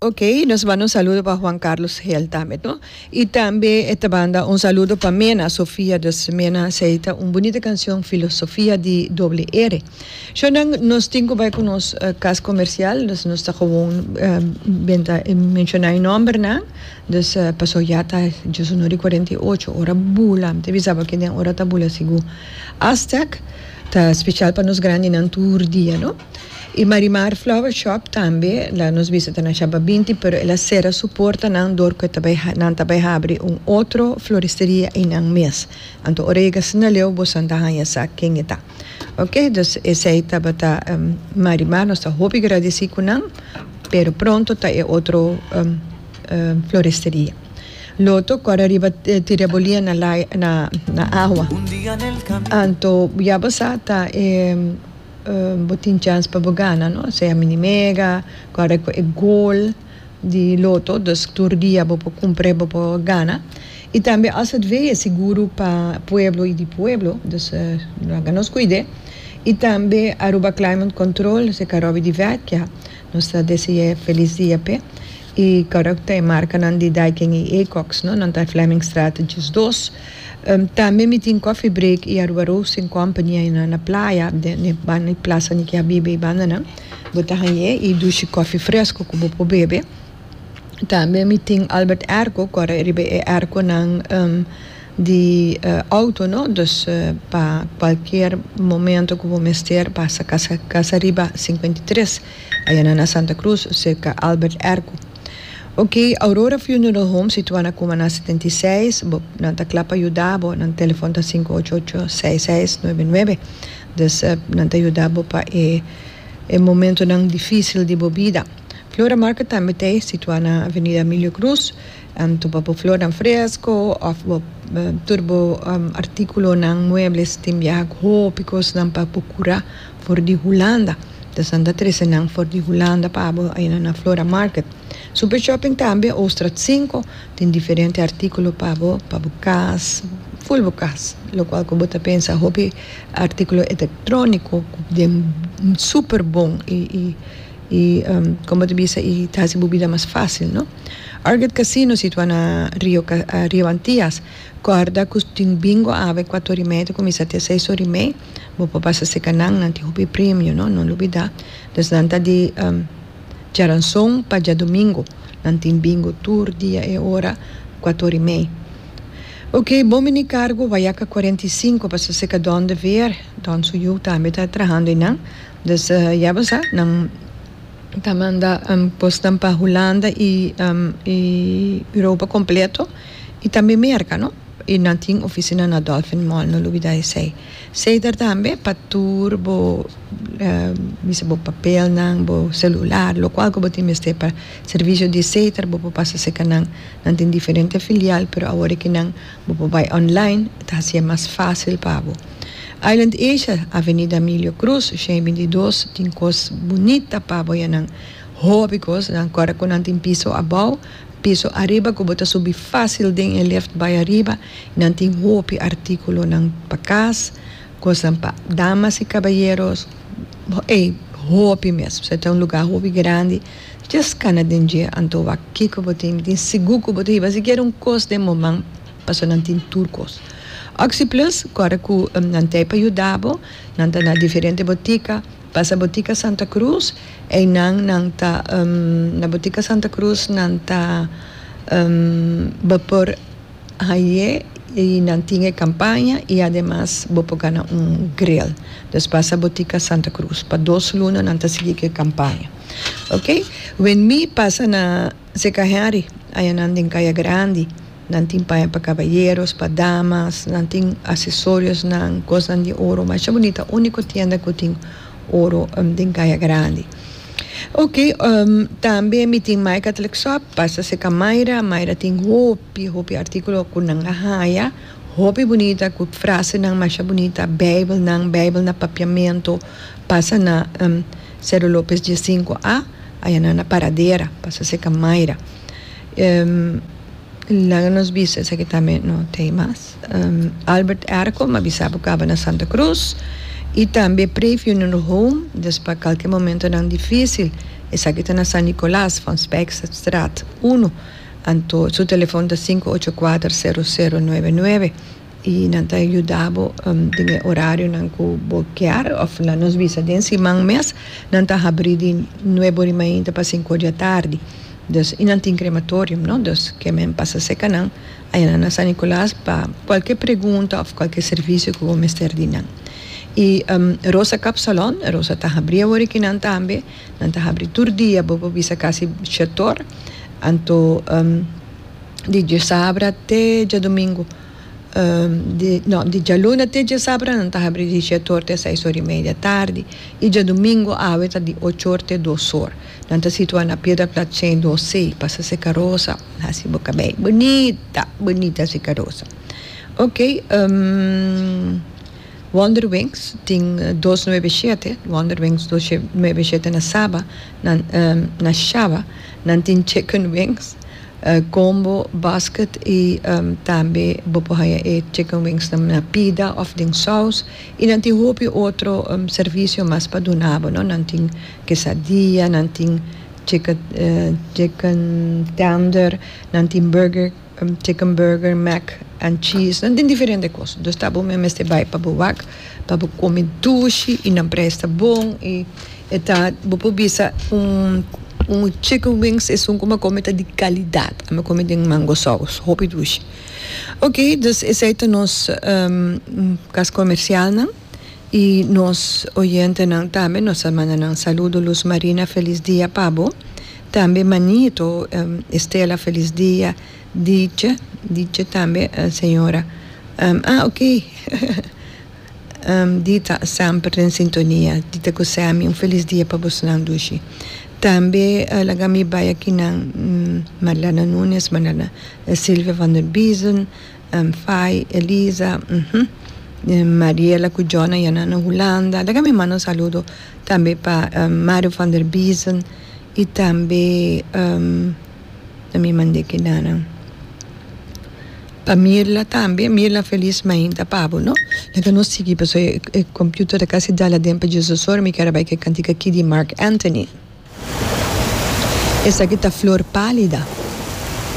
Ok, nos manda un saludo pa Juan Carlos Hel tambe no. Y tambe e ta manda un saludo pa Mena Sofia. Dus Mena sei ta un bunita cancion Filosofia di doble R. Shornan nos tin cu bay cu nos cas comercial dus nos ta gewoon benta y menciona e nombernan. Dus paso ya ta djoso no di cuarenta y ocho ora bula. Mi ta bisa bo aki den ora ta bula sigur. Aztec ta special pa nos grandinan tur dia no. Y Marimar Flower Shop tambe la nos visita na Shabba binti pero el a cera su portanan door cu nan ta bay habri un otro floristeria y nan mes. Anto ora yega asina leu bo san ta haya sa ken e ta. Ok dus esey tabata Marimar nos ta hopi gradici cu nan pero pronto ta e otro floristeria. Loto cor ariba tira e bolia na na agua. Anto ya bo sa ta e. Bo tin chans pa bo gana no sea mi di mega guarda cu e gol di loto dus tur dia bo por cumpre bo por gana y tambe as het vee e seguro pa pueblo y di pueblo dus lo haga nos cuide y tambe Aruba climate control esaki robi di vekja nos ta desea feliz dia pe. E karakter i markanan di Daikin i Ecox, no? Nan ta e Flemmingstraat djis dos. Tambe mi tin Coffee Break i Aruba Roasting Company ayina na playa, den banda di Plaza Nicky Habibi i bandanan. Bo ta hañ'é i dushi kòfi fresku ku bo por bebe. Tambe mi tin Albert Airco ku a ta riba e airconan di outo, no? Dus pa kualkier momento ku bo mester pasa kasa riba singkuenta i tres. Ayana na Santa Cruz, serka Albert Erco. Ok, Aurora Funeral Home situa na Kuma na setenta i seis, bo, nan ta kla pa yuda bo, nan telefon ta sinku ocho ocho, seis seis, nuebe nuebe. Dus, nan ta yuda bo pa e e momentonan difisil di bo bida. Flora Market tambe ta situa na Avenida Emilio Cruz, Anto pa bo flornan fresco of bo tur bo articulonan muebles tin biaha cu hopi cosnan pa bo cura for di Hulanda ta esnan ta trece nan for di Hulanda pa bo ayina na Flora Market. Super Shopping tambe Ooststraat cinco tin diferente articulo pa bo pa bo cas full bo cas lo cual cu bo ta pensa hopi articulo electronico cu den super bon y como bo ta bisa y ta haci bo bida mas facil no. Arget Casino situa na Rio Rio Antias corda cu tin bingo ave cuato ori media cuminsa te seis ori mei bo por pasa seca nan nan tin hopi premio no no lubida des nan ta di Charanzon pa Diadomingo nan tin bingo tur dia e ora cuato ori mei ok bon bini cargo Wayaca cuarenta y cinco pasa seca Don de Veer Don su yu tambe ta trahando ainan des ya bo sa nan. ta manda bosnan pa Hulanda y Europa completo y tambe Merca no y nan tin oficina na Dolphin Mall no lubida esey ceder tambe pa tur bo bisa bo papelnan bo celular locual cu bo tin mester pa servicio di ceder bo por pasa cerca nan nan tin diferente filial pero awor e ki nan Bo por bai online, e ta hasié mas fásil pa bo. Island Asia, Avenida Emilio Cruz, shei bintidos, tin kos bunita pa bo yanan. Hòbi kos, nan kòrda ku nan tin piso abou, piso ariba ku bo ta subi fásil den e lèft bai ariba i nan tin hopi artíkulonan pa kas, kosnan pa damas i kabayeros, ei, hopi mes. Bo sa e ta un lugá hopi grandi. Just kana den dje anto wak kiko bo tin, tin sigur ku bo ta hiba sikiera un kos den moman paso nan tin tur kos. Oxyplus kòrè ku nan tei pa yuda bo, nan ta na diferente botika, pasa botika Santa Cruz, einan nan ta na botika Santa Cruz nan ta bo por. Haye y nan tin e campaña y ademas bo por gana un grill. Dus pasa botica Santa Cruz. Pa dos luna nan ta sigui cu e campaña. Ok. Wen mi pasa na Zeca Henry ayanan den Caya Grandi. Nan tin paña pa caballeros, pa damas, nan tin accesoriosnan, cosnan di oro. Masha bunita. Unico tienda cu tin oro den Caya Grandi. Ok tambe mi tin my catholic shop pasa seca myra myra tin hopi hopi articulo cu nan a haya hopi bunita cu frasenan masha bunita bijbelnan bijbel na papiamento pasa na Cerro Lopez dia sinku a ayanan na paradera pasa seca myra. Laga nos bisa esaki tambe no ta ei mas. Albert Ercom a bisa pa kaba na Santa Cruz i tambe Pre Funeral Home dus pa kalke momentonan difísil. Esaki ta na San Nicolas van Spijksterstraat uno, anto su telefòn ta sinku ocho kuater sero sero nuebe nuebe. I nan ta yuda bo den e orarionan ku bo kier òf la nos bisa den siman mes. Nan ta habrí di nuebe ori mainta pa sinku di atardi. Dus, i nan tin krematorium, no? Dus ke men pasa serka nan ayanan na San Nikolaas pa kualke pregunta òf kualke servisio ku bo mester di nan. I Rosa Kapsalon, Rosa ta habrí awor i kinan tambe. Nan ta habrí tur dia bo por bisa kasi shèt òr. Anto. di djasabra te djadumingu, di no di djaluna te djasabra nan ta habri di shet or te seis or i media tardi i djadumingu awe ta di och or te dos or. Nan ta situa na Piederplatz ciendoseis pasa Seka Rosa hasi bo kabei bunita bunita Seka Rosa ok Wonderwings tin dos nuebe shete Wonderwings dos nuebe shete na Saba. Nan na Shaba nan tin chicken wings, combo, basket y tambe bo por haya e chicken wings nan na pida of den saus y nan tin hopi otro servicio mas pa duna bo no nan tin quesadilla nan tin chicken tender nan tin burger Chicken burger, mac and cheese, nan tin diferente kos. Dus ta bo me mester bai pa bo wak pa bo kome dushi i nan prijs ta bon i e ta bo por bisa un un chicken wings esun ku mi a kome ta di kalidat, a mi a kome den mango sous hopi dushi. Oke, dus esei ta nos kas komersialnan. y nos oyentenan tambe nos ta manda nan saludo Luz Marina felis dia pa bo tambe manito Estela felis dia Dicha Dicha tambe señora ah ok Dita semper den sintonia Dita cu Sammy un felis dia pa bos nan dushi tambe laga mi bay aki nan Marlana Nunes Marlana Silvia Vanderbiesen. Fai, Elisa, uhmm, Mariela cu Jona ya nan na Hulanda. Laga mi manda un saludo tambe pa Mario van der Biesen y tambe na mi mande kinanan pa Mirla tambe, Mirla Feliz mainta pa bo no, laga nos sigui paso e computer ta casi dal aden pa dje zes ora mi ker a bay ke cantica aki di Marc Anthony esaki ta Flor palida.